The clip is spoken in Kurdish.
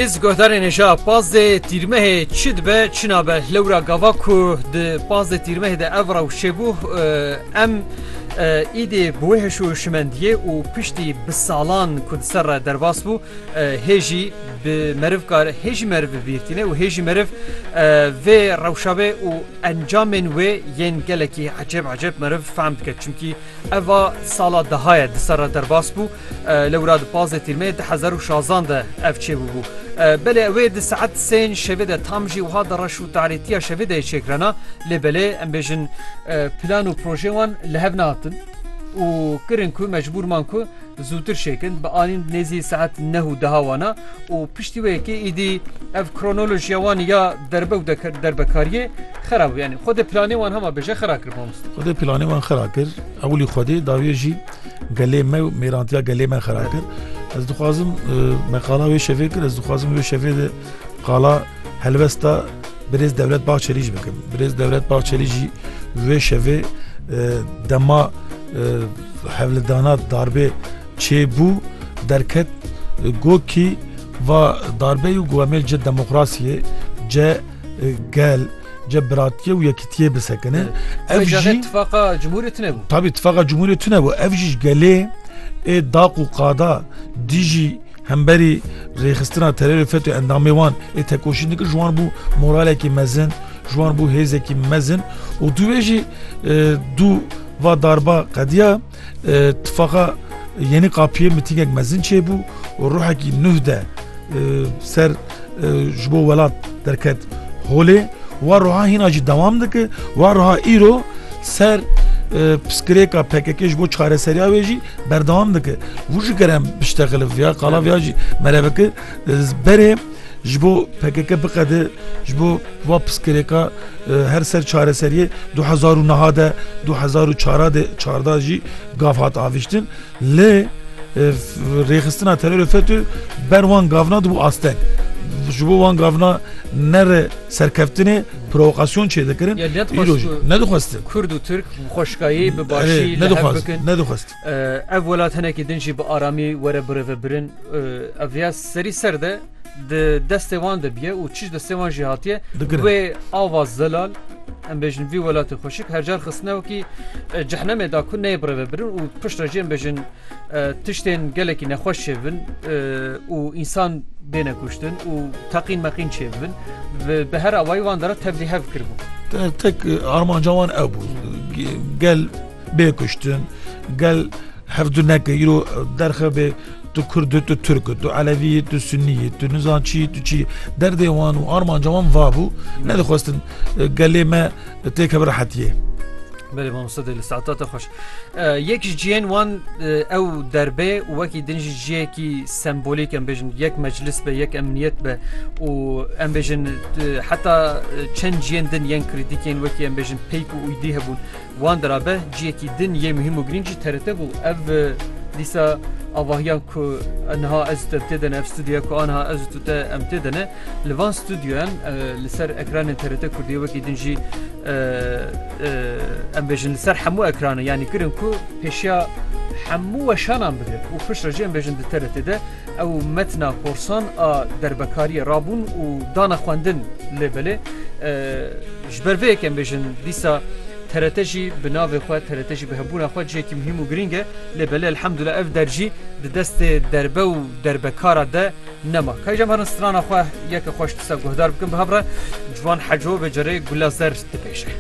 Hêz guhdarên hêja pazdê tîrmehê çi dibe çi nabe lewra gava ku di pazdê tîrmehê de ev rewşê bû em îdê bi wê hêş û şimendiyê û piştî bi salan ku di ser re derbas bû hêjî bi meriv kar hêjî meriv bibîrtîne û hêjî meriv vê rewşa bê û encamên wê yên gelekî ecêb ecêb meriv fehm dike çimkî eva sala deha ye di ser re derbas bû Li wira di pazdeh Tîrmeyê du hezar û şazan de ev çêbûbû. Belê wê di saet sên şevê de tam jî wiha di reş û tarîtiya şevê deyê çêkirana lê belê em bêjin plan û projeyên wan li hev nehatin û kirin ku mecbûr man ku zûtir çêkin bi anîn nêzî saet neh û deha wana û piştî wê yekê îdî ev kronolojiya wan ya derbe û derbekariyê xera bû yanî xwedê planê wan hema bêje xera kir mamoste. Xwedê planê wan xera kir ewilî xwedê dawiyê jî gelê me û mêrantiya gelê me xera kir ez dixwazim me qala wê şevê kir ez dixwazim wê şevê de qala helbesta birêz dewlet bahçelî jî bikim birêz dewlet bahçelî jî wê şevê dema hevlidana darbê çê bû derket gokî va darbeyê û guhemê ci demokrasiyê ce gel cebratiyê û yekitiyê bisekine ev jî tifaqa cumhurê tune bû tabî tifaqa cumhurê tune bû ev jî gelê ê daq û qada dijî hemberî rêxistina terorê FETÖ endamê wan ê tekoşîn dikir ji wan bû moralekî mezin ji wan bû hêzekî mezin û dûvê jî dû va darba qediya Tifaqa Yeni Kapı'yê mitingek mezin çêbû û ruhekî nuh de ser ji bo welat derket holê wa roha hîna jî dewam dike wa roha îro ser piskirêka PKK ji bo çareseriya wê jî berdewam dike. Vû ji kerem biştexilif ya qala viya jî mereveke berê Ji bo pkk biqede ji bo va piskirêka her ser çareseriyê du hezar û niha de du hezar û çara de çarda jî gav hat aviştin lê rêxistina terorê FETÖ ber wan gavna dibû asteng. Ji bo wan gavna nere serkeftinê provokasyon çêdikirin. Îroj nedixwestin. Kurd û Tirk xweşkayê bi başî nedixwestin. Ev welat hinekî din jî bi aramî were birêvebirin. Ev rêya serî ser de di destê wan de biye û çi ji destê wan jî hatiye wê ava zelal em bêjin vî welatê xweşik hercar xistine wekî cehnemê da ku neyê birêvebirin û pişt re jî em bêjin tiştên gelekî nexweş çêbibin û însan bêne kuştin û teqîn meqîn çêbibin bi her awayî wan de re tevlî hev kiribû. Tek armanca wan ew bû gel Bê kuştin gel hevdu neke îro derxe bê tu kurd tu turk tu elevî tu sunî tu nizan çî tu çî derdê wan û armanca wan vabû nedixwestin e, gelê me têke bi rehetiyê. Belê mamosta dê li saeta te xweş. E, yek ji ciyên wan e, ew derbê û wekî din jî ciyekî sembolîk em bêjin yek meclis be yek emniyet be û em bêjin e, heta e, çend ciyên din yên krîtîkên wekî em bêjin peyk û uydî hebûn. Wan dirabe ciyekî din yê muhîm û girîng jî TRT bû. Ev dîsa avahiya ku niha ez û te tê de ne, ev studyoya ku aniha ez û tu te em tê de ne, li van studyoyan li ser ekranên TRT Kurdiyê wekî din jî em bêjin li ser hemû ekranan yanî kirin ku pêşiya hemû weşanan bigirin û piştre jî em bêjin di TRT de ew metna korsan a derbekariyê rabûn û dana xwendin lê belê Ji ber vê yek em bêjin dîsa TRT jî bi navê xwe, TRT jî bi hebûna xwe cihekî muhîm û girîng e. Lê belê elhemdullah ev der jî di destê derbe û derbekara de nema. Kayî jem herin strana xwe yeke xweş dîsa guhdar bikin bi hev re Ciwan Heco vê carê Gula Zer dibêje.